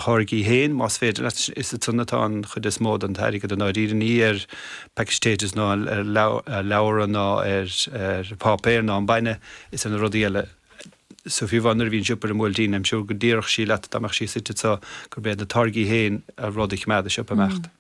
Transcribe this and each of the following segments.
tháirgí féin, más féidir leat. Is i san atá an chuid is mó den t-airgead i ndáiríre, ní ar postage stamps ná ar leabhra ná ar pháipéar ná an bainne, is ar na rudaí eile. So fiú amháin nuair a bhí an siopa ar an mBuailtín, I'm sure go déarfadh sí leat dá mbeadh sí suite anso gurb iad na táirgí féin a rud a choimeád an siopa ag imeacht.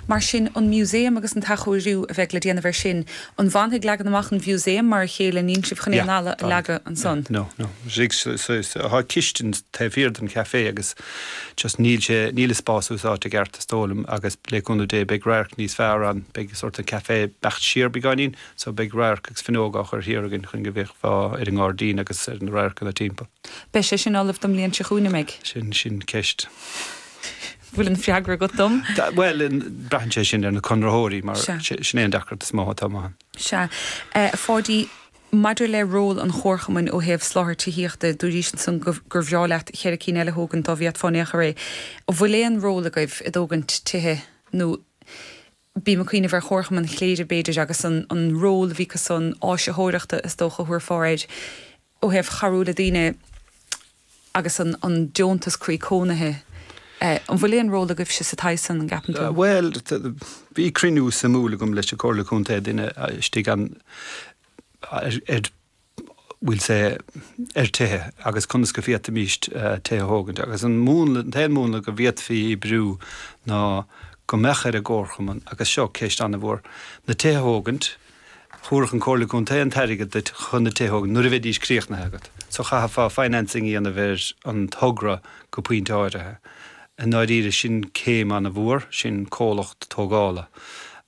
Mar sin, an Museum agus an t-athchóiriú a bheidh le déanamh air sin, an bhfanfaidh leagan amach an Mhuseum mar a chéile, níl sibh chun aon fhalla a leagadh ansan? Yeah, no, no, just, so tá cistin taobh thiar den chafé agus just níl sé, níl a spás úsáidte i gceart is dóigh liom agus le cúnamh Dé beidh radharc níos fearr ann, beidh sórt an café ag imeacht siar beagáinín so beidh radharc agus fuinneoga á chur thiar againn chun go bhféachfá ar an ngairdín agus ar na radharcanna timpeall. Beidh sé sin ullamh don mbliain seo chugainn, an mbeidh? Sin, sin ceist. bhfuil an freagra agat dom? Bhuel, braitheann sé sin ar na conraitheoirí mar sin é an deacracht is mó atá amach ann. Sea. A Pháidí, maidir le ról an chomharchumainn ó thaobh soláthar tithíochta, dúraís ansan gur bhreá leat cheithre cinn eile a thógaint dá bhféadfá in aon chor é. An bhfuil aon ról agaibh i dtógaint tithe nó bím ag cuimhneamh ar Chomharchumann Chléire b'fhéidir agus an ról a bhí acu san áisitheoireachta is dócha a thabharfá air ó thaobh chabhrú le daoine agus an deontas croí cónaithe. An bhfuil aon ról agaibhse sa taobh san an gceapann tú? Bhuel bhí cruinniú suimiúil agam leis an Comhairle Contae duine istigh ann ar. bhfuil sé ar tithe agus conas go bhféadfaimís tithe a thógaint agus an t-aon múnla go bhféadfadh oibriú ná go mbeadh ar an gcomharchumann, agus seo ceist an-mhór, na tithe a thógaint. Thabharfadh an Comhairle Contae an t-airgead duit chun na tithe a thógaint nuair a bheidís críochnaithe agat. So chaithfeá financing a dhéanamh ar an togra go pointe áirithe. I ndáiríre sin céim an-mhór, sin comhlacht tógála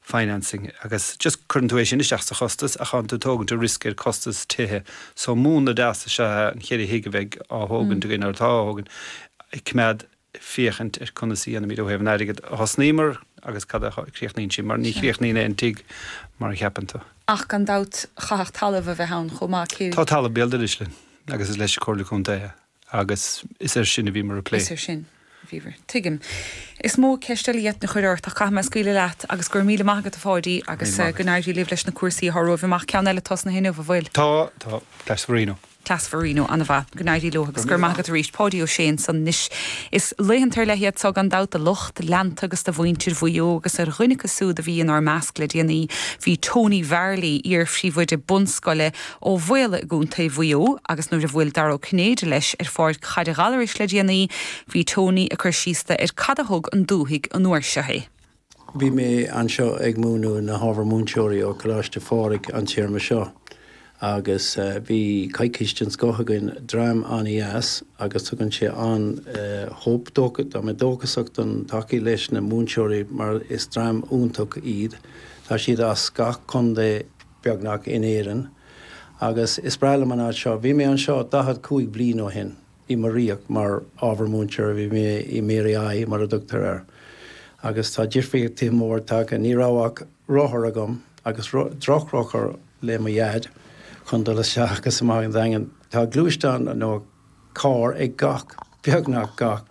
financing agus just cuireann tú é sin isteach sa chostas ach tá'n tú tógaint an risk ar costas tithe so múnla deas is ea na cheithre thigh a bheidh á thógaint againn nó atá á thógaint a choimeád féachaint ar conas a dhéanfaimid ó thaobh an airgead a thosnaíomar agus cad a chríochnaíonn sí mar ní Sea. chríochnaíonn aon tigh mar a cheapann tú. Ach gan dabht chaithfeadh talamh a bheith ann chomh maith is dócha. Tá talamh béal dorais linn agus is leis an Comhairle Contae é. Agus is air sin a bhíomar ag plé. Is air sin a bhíomar. Tuigim. Is mó ceist eile a d'fhéadfainn a chur ort ach caithfidh mé scaoileadh leat agus go raibh míle maith agat a Pháidí agus go n-éirí libh leis na cúrsaí atá romhaibh amach. Ceann eile tosnaithe inniu, an bhfuil? Tá, tá. Coláiste Mharino. Class Mharino, ana mhaith. Go n-éirí leo agus go raibh maith agat arís Páidí Ó Sé ansan. Anois is laethanta ar leith iad seo gan dabht do lucht leanúna agus do mhuintir Mhaigh Eo agus ar dhuine acu siúd a bhí inár measc le déanaí bhí Tony Varley, iar phríomhoide bunscoile Ó Bhaoghaill i gContae Mhaigh Eo agus nuair a bhuail Dara Ó Cinnéide leis ar Pháirc Chaide Ghallarais le déanaí bhí Tony ag cur síos dó ar cad a thug don dúthaigh an uair seo é. Bhí mé anseo ag múineadh na hábhar múinteoirí ó Choláiste Phádraig an téarma seo agus bhí coicís den scoth againn, dream an-deas agus tugann sé an-hope dóchas, tá mé dóchasach don todhchaí leis na múinteoirí mar is dream iontach iad, tá siad as gach contae. beagnach, in Éirinn agus is breá liom an áit seo. Bhí mé anseo daichead cúig bliain ó shin i mo riocht mar ábhar múinteora. Bhí mé i Mary I, mar a dtugtar air, agus tá difríochtaithe mór tagtha. Ní raibh ach rothar agam agus drochrothar le mo dhaid chun dul isteach agus amach an Daingean. Tá gluaisteán nó. carr ag gach, beagnach gach,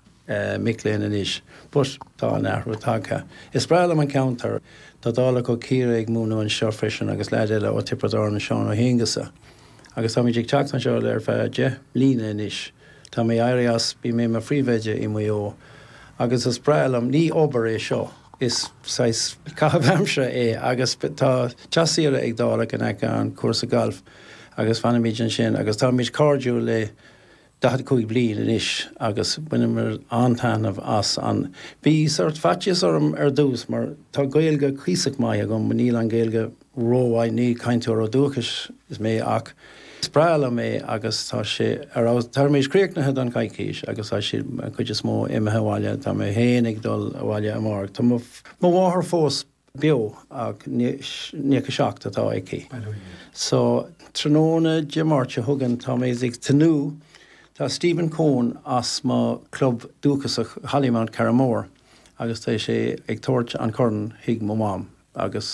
mic léinn anois, but tá an athrú tagtha. Is breá liom an ceantar. Tá Dálaigh ó Chiarraí ag múineadh anseo freisin agus leaid eile ó Tiobraid Árann, Seán Ó hAonghusa. Agus táimid ag teacht anseo le ar feadh deich mbliana anois. Tá mé éirí as, bhí mé i mo phríomhoide i Maigh Eo agus is breá liom, ní obair é seo, is saghas caitheamh aimsire é agus tá teach saoire ag Dálaigh in aice an cúrsa gailf. agus fanaimid ansin agus táimid cairdiúil le daichead cúig bliain anois agus baineamar an-taithneamh as an, bhí sort faitíos orm ar dtús mar tá Gaeilge cuíosach maith agam, níl an Ghaeilge rómhaith, ní cainteoir ó dúchais is mé ach is breá liom é agus tá sé ar fheabhas, táimid críochnaithe don choicís agus tá siad an chuid is mó imithe abhaile, tá mé féin ag dul abhaile amárach, tá mo mháthair fós. beo ach nócha 7 atá aici. So tráthnóna Dé Máirt seo chugainn tá mé ag tnúth, tá Stephen Coen as mo chlub dúchasach Hollymount, Carramore agus tá sé ag tabhairt an corn chuig mo mham agus.